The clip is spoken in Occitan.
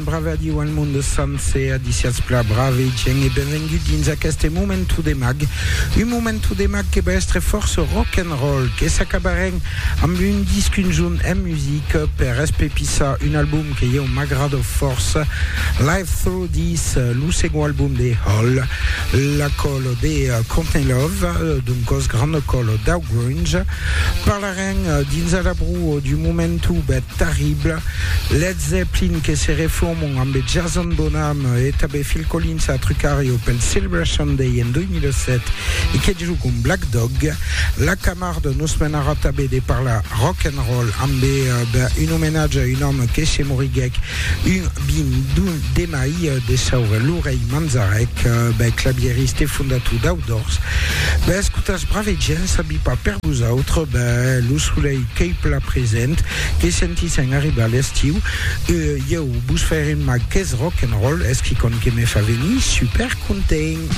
Brave a Diu al monde sancer, a disiatz pla brave gent e benvengut dins aqueste momentu de mag. Un momentu de mag que va estre fòrça rock and roll, que s'acabarem amb un disc un jorn en music per espepissar un album que ieu m'agrada fòrça, Live Through This, lo segond album de Hole, la còlo de Courtney Love, d'un còs granda còlo dau grunge. Parlarem dins Alabru du momentu Terrible, Led Zeppelin que se refòman ambe Jason Bonham e tanbe Phil Collins a Trucario pel Silver Sunday en 2007 e que jugam Black Dog. La Camarde nos menarà tanbe de parlar rock and roll ambe un omenatge a un òme que se moriguèc un 21 de mai de saure, Lurey Manzarek, clavieriste e fondator d'Outdoors. Bèscotas brave gents, sabi pas per vosautres, bè lo solelh qu'ei plan present, que sentissen arribar l'estiu, ieu vos fè rimar qu'es rock and roll, es quicòm que me fa venir super content.